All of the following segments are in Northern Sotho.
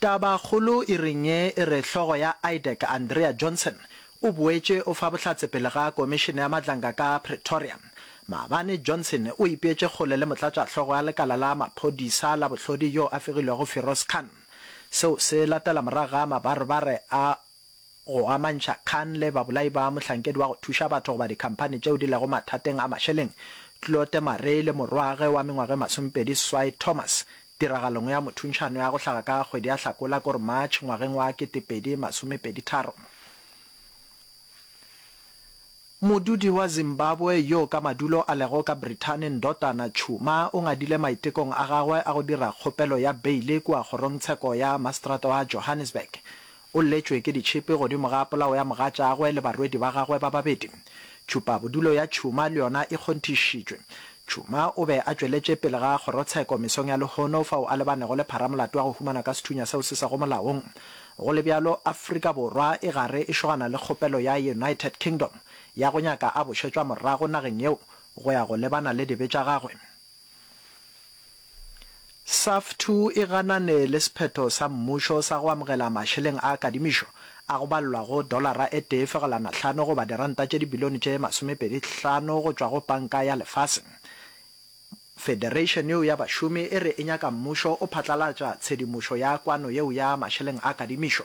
Tabakgolo e reng ye e re hlogo ya IDEC Andrea Johnson o boetše o fa bohlatse pele ga komišene ya matlanka ka Pretoria. Maabane Johnson o ipeetše kgole le motlatšahlogo ya lekala la maphodisa la bohlodi yo a fegilwego Firoz Khan. Seo se latela morago ga mabarebare a go amantšha kgang le babolai ba mohlankedi wa go thuša batho goba dikhamphani tšeo di lego mathateng a mašeleng, Claude Marais le morwagwe wa mengwaga e masomepedi seswai Thomas, tiragalong ya mothuntšhano ya go hlaga ka kgwedi ya Hlakola kor March ngwageng wa ketepedi masomepedi tharo. Modudi wa Zimbabwe yo ka madulo a lego ka Brithani Ndotana Tshuma o ngadile maitekong a gagwe a go dira kgopelo ya beile kua kgorongtsheko ya mastrata wa Johannesburg O lletšwe ke ditšhipi godimo ga polao ya mogatšagwe le barwedi ba gagwe ba babedi. Tšhupabodulo ya Tšhuma le yona e kgonthišitšwe. Tšhuma o be a tšweletše pele ga kgorotsheko mesong ya lehono fao a lebanego le pharamolato ya go humana ka sethunya seo se sego molaong. Go le bjalo, Afrika Borwa e gare e šogana le kgopelo ya United Kingdom ya go nyaka a bušetšwa morago nageng yeo go ya go lebana le dibe tša gagwe. SAFTU e ganane le sephetho sa mmušo sa go amogela mašeleng a kadimišo a go balelwa go dolara e tee fegelwana hlano goba diranta tše dibilione tše masomepedi hlano go tšwa go Panka ya Lefase. Federation yeo ya bašomi e re e nyaka mmušo o phatlalatša tshedimošo ya kwano yeo ya mašeleng a kadimišo.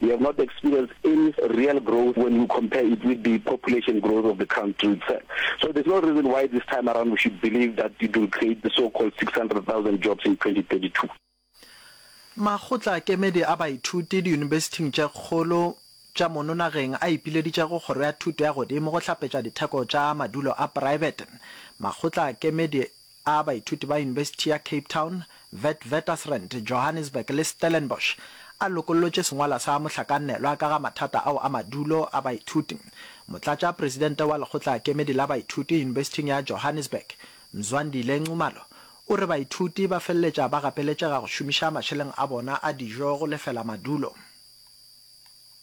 We have not experienced any real growth when you compare it with the population growth of the country itself. So there's no reason why this time around we should believe that it will create the so-called 600,000 jobs in 2032. Makgotla a kemedi a baithuti diyunibesithing tše kgolo tša mono nageng a ipileditše go Kgoro ya Thuto ya Godimo go hlapetša ditheko tša madulo a praebete. Makgotla a kemedi a baithuti ba Yunibesithi ya Cape Town, Witwatersrand, Johannesburg le Stellenbosch a lokollotše sengwalwa sa mohlakanelwa ka ga mathata ao a madulo a baithuti. Motlatšapresidente wa Lekgotlaakemedi la Baithuti Yunibesithing ya Johannesburg, Mzwandile Nxumalo, o re baithuti ba feleletša ba gapeletšega go šomiša mašeleng a bona a dijo go lefela madulo.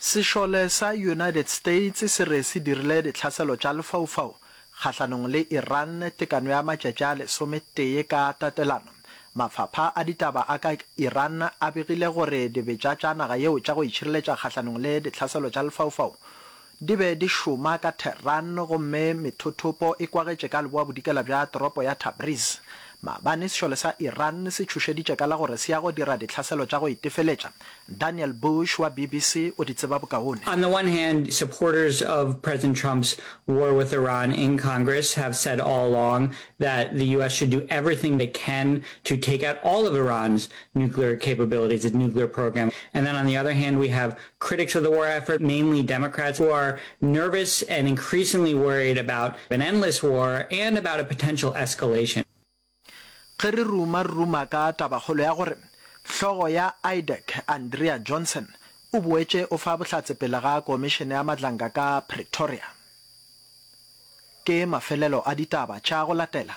Sešole sa United States se re se dirile ditlhaselo tša lefaufau kgahlanong le Iran tekano ya matšatši a lesometee ka tatelano. Mafapha a ditaba a ka Iran a begile gore dibetša tša naga yeo tša go itšhireletša kgahlanong le ditlhaselo tša lefaufau Di be di šoma ka Tehran gomme methothopo e kwagetše ka leboabodikela bja toropo ya Tabriz. Maabane sešole sa Iran se tšhošeditše ka la gore se ya go dira ditlhaselo tša go itefeletša. Daniel Bush wa BBC o di tseba bokaone. On the one hand, supporters of President Trump's war with Iran in Congress have said all along that the US should do everything they can to take out all of Iran's nuclear capabilities, its nuclear program. And then on the other hand, we have Critics of the war effort, mainly Democrats, who are nervous and increasingly worried about an endless war and about a potential escalation. Ge re ruma-ruma ka tabakgolo ya gore hlogo ya IDEC, Andrea Johnson, o boetše o fa bohlatse pele ga komišene ya matlanka ka Pretoria, ke mafelelo a ditaba tša go latela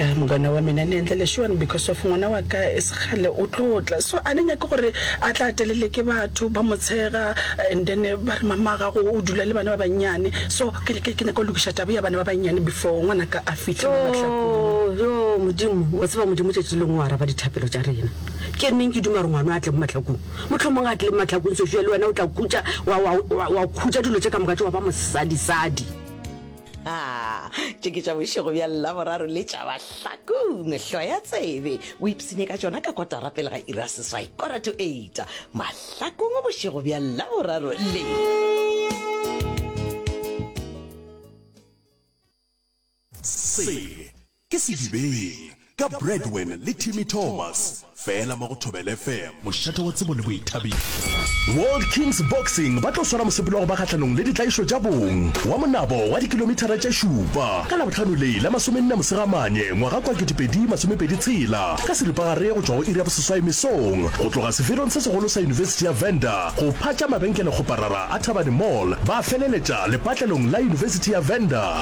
ya mogana wa mina ne ntle leshuan because of ngwana wa ka e segale o tlo tla so a ne nyake gore a tla telele ke batho ba motshega and then ba re mama gago o dula le bana ba bannyane so ke ne ke nyaka go lokiša tabo ya bana ba bannyane before ngwana ka a fitlhe mo matlakong yo modimo wa tseba modimo tšatši lengwe wa araba dithapelo tša rena ke neng ke duma gore ngwana a tle mo matlakong Mohlomong a tle mahlakong sešo ya le wena o tla khutša wa, wa, wa, wa khutša dilo tše ka moka tše wa ba mosadisadi. Ha, tše ke tša bošego bja Laboraro le tša mahlakong. Hlo ya tsebe, o ipsine ka tšona ka kotara pele ga iri ya seswai, kora to eight, mahlakong bošego bja Laboraro le. Se ke Sedibeng ka Bradwin le Timmy Thomas fela mo go Thobela FM. Mošate wa tsebo le boithabišo. World Kings Boxing ba tlo swara mosepelo wa go ba kgahlanong le ditlaišo tša bong wa monabo wa dikilomithara tše šupa ka Labohlano le la masomenne Mosegamane ngwaga kwa 2026 ka seripagare go tšwa go iri ya boseswai mesong go tloga seferong se segolo sa yunibesithi ya Venda go phatša mabenkele kgoparara a Thabane Mall ba feleletša lepatlelong la yunibesithi ya Venda.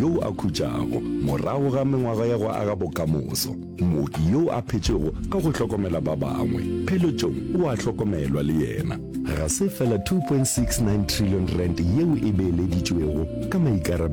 yo a khutšago morago ga mengwaga ya go aga bokamoso, mooki yo a phetšego ka go hlokomela ba bangwe, pheletšong o a hlokomelwa le yena. Ga se fela R2.69 trillion yeo e beeleditšwego ka maikarabelo.